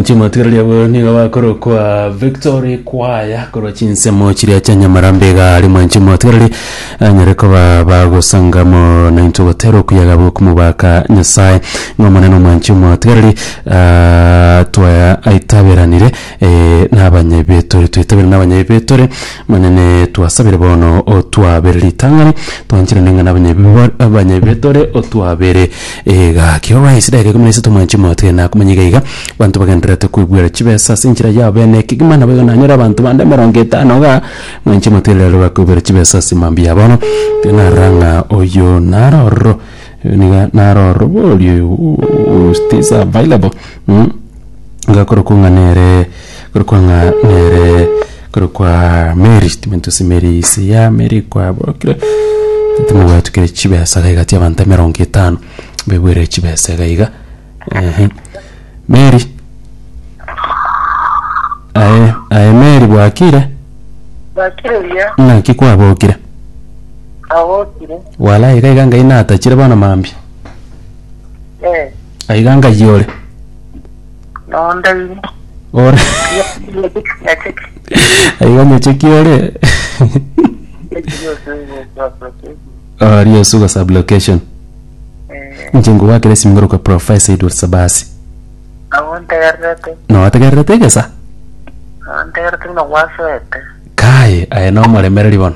Chimatigereri abo nigo bakorokwa Victory Choir korwa chinsemo chiria chia Nyamarambe iga ari mwanchi mwatigereri anyare koba bagosangamo na intwe gotera okuyaga bwokumobaka Nyasaye ng'a Omonene omwanchi omwatigereri ah, twaitaberanire nabanyayi betore, twaitabire nabanyayi betore, Omonene twasabire bono otwabere ritang'ani, twanchera neng'ana abanyayi bibo abanyayi betore otwabere egaki. Orwa ase edageka ikomi na isato mwanche motige nakomanya iga iga, abanto bagendererete koigwera chibesa ase enchera yabo bene ekegima, nabo igo nanyore abanto bande emerongo etano igaa, mwanche motige riria bakoigwera chibesa ase mambia ya bono, tinarora ng'a oyo naro ororo. Niga naroroborie who stays available mm, niga kore kwang'a nere kore kwang'a nere kore kwa Mary timentosi Mary isi ya Mary kwaborokire timobwatukire chibesa iga egati abanto emerongo etano mbebwere chibesa iga iga ehe Mary aye aye Mary bwakire Bakire buya, naki kwabokire abokire. Walai iga iga ngai natachire bono mambia. Eh, Aiga ngai ore. nonde imo. Ore. Nyacheki. Aiga nyacheki ore. Nyacheki yose yose. Ori osuga sub location. Eh, Nche ngogwakera esimigoro kwa Professor Edward Sabasi. abo ntegererete. Notegererete egesa? Ntegerete buna gwasete. Kae aye nomoremereri bono.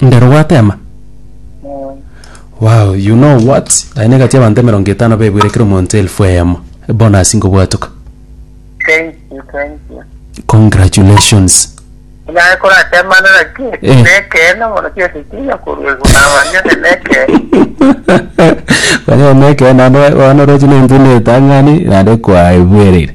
Ndero gwatema? Eh, Wow, you know what? Aye negati abanto emerongo etano bebuire kera omonto elfu eyemo. Bonus ngobwatoka. thank you, thank you. Congratulations. Naye koratemanera ki? Eh. Nekeene mono kiasi kinya korwa iguru nabanyone nekeene. Banyana neke nando bana roche ne ntune tangani nande kwaebuerire.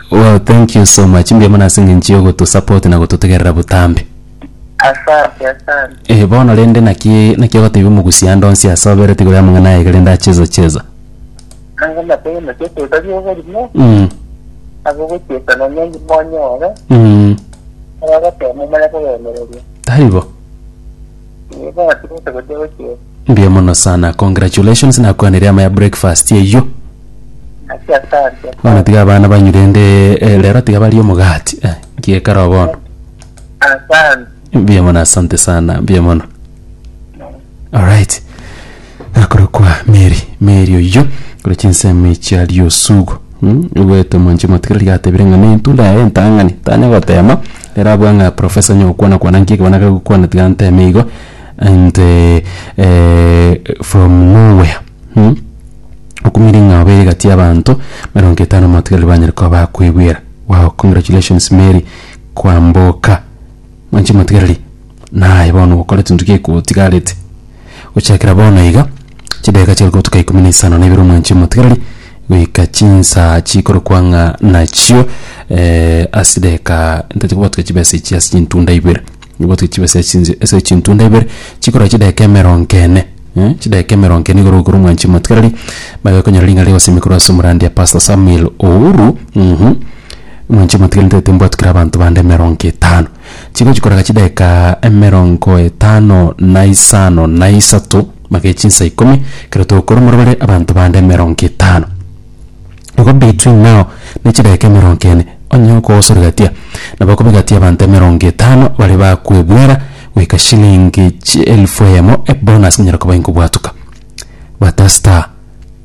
Wow thank you so much mbuya mono ase eng'encho ya ogoto support na gototegerera botambe. Asante asante. Eh bono rende naki naki ogotebi omogusi ande onsi ase obere tigoro yamang'ana aye iga rende acheza cheza. Nanga matege naki eteba riogo rimo. Mm. Abo gochesa na nyangi monyore. Mm. Aba batemo mare kobemereria. Taribo. Nigo atigete gochia gochiera. Mbuya mono sana. Congratulations nakwanire ama ya breakfast eyio. Naki asante. Bono tiga abana banywe rende eh, rero tiga barie omogati. Eh, nkiekaro bono. Asante. Mbuya mono asante sana. Mbuya mono. Alright. akorokwa Meri, Meri oyio korwa chinsemo echi aria osugo mm, ogoeta omonche motigire riria atebire ng'a ne intunda yaye entang'ani, tanya gotema, ere abua ng'a professor onye ogokwana kwana nki ekebana keria ogokwana tiga nteme igo and from no where mm, okumire ng'a obeire egati y'abanto emerongo etano motigaire banyare koba bakwegwera, wow congratulations Meri kwamboka, mwanchi motigareri naye bono ogokora chinto gekotigarete. Gochakera bono iga, chidageka chiare kotuka ikomi na isano na ibere omwanchi omotigareri, goika chinsa chikorokwa ng'a nachio eh, ase chidageka ntache kobwatukia chibesa echi ase chintunda ibere. Obwatuke chibesa echi chinse ase chintunda ibere, chikorwa chidageka emerongo ene, eh, chidageka emerongo ene igoro igoro omwanchi omotigareri, bagakonyora ring'ana rigosemia korwa ase omorandia Pastor Samuel Ouru, mh, omwanchi omotigareri ntagete mbwatukere abanto bande emerongo etano. Chigochi korega chidaeka emerongo etano na isano na isato, mage chinsa ikomi, ekero togokora omorero bare abanto bande emerongo etano. Igo between now ne chidaeka emerongo ene, onye okogosoregatia, nabo okobegatia abanto emerongo etano baria bakwebwera goika shilingi chi elfu eyemo ebonus konyara koba inkobwatuka. Bata star,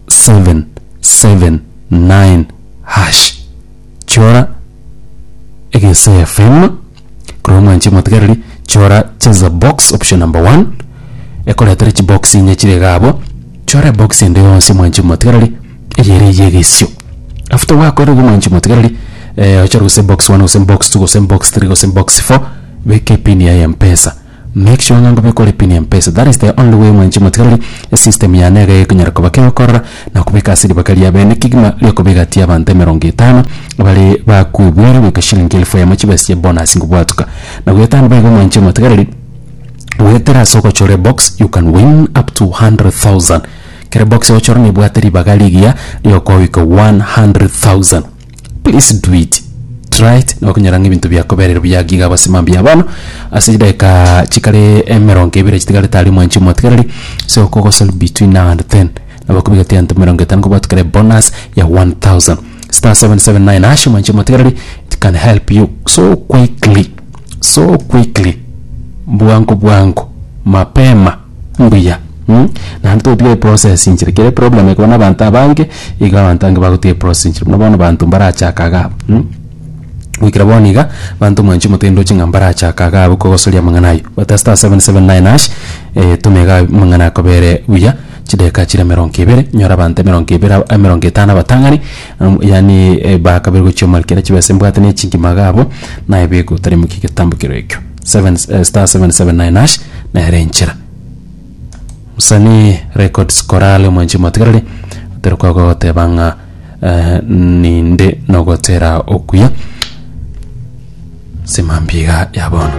seven, seven, nine, hash. chora egesaia fm korwa mwanche motigereri chora cheza box option number one ekoretere chibox inye chire iga abwo chora ebox ende yonsi mwanche motigereri eye ere eye egesio after gwakorire igo mwanchi motigereri eh, ochore gose box one gose box two gose box three gose box four beka epini yaye ya mpesa Make sure ng'a ngobe kore pin ya mpesa that is the only way mwanche motigareri esystem yane iga ekonyara koba kegokorora na kobeka ase riboka ria bene kegima riokobegati abanto emerongo etano bare bakwebwire goika shilingi elfu eyemo chibe ase bonus ngobwatuka na goetano baigo mwanche motigareri goetera ase ogochora ebox you can win up to 100,000 kera ebox ogochora nebwate ribaga rigiya riokogoika 100,000. Please do it. Try it na okonyora ng'a ebinto biakoberire buya gaki iga gose mambia. Bono ase chidakika chikare emerongo ebere chitigarete aria omwanchi omotigareri ase okogosori between now and then nabo okobegete egento emerongo etano kobwatwa kare bonus ya 1000 star 779 hash omwanchi omotigareri it can help you so quickly so quickly bwango bwango mapema. mbuya naende togotiga eprocess inchire kere eproblem ekobana abanto abange iga abanto abange bagotiga eprocess inchire buna bono abanto mbarachake iga abwo goikera bono iga abanto mwanche omotwe ndoche ng'a mbarachake iga abwo kogosoria amang'ana aywo gota star seven seven nine hash toma iga amang'ana akobere buya chidakika chire emerongo ebere nyore abanto emerongo ebere aba emerongo etano abatang'ani amu yaani ebakabere gochia omorikere chibesa mbwate na echingima iga abwo naye beka otari moke egetambo kero ekio. *779# nero enchera msanii records korale omwanchi motigarari otari kwaga goteba ng'a eh, ninde nogotera okuya simambiga ya bono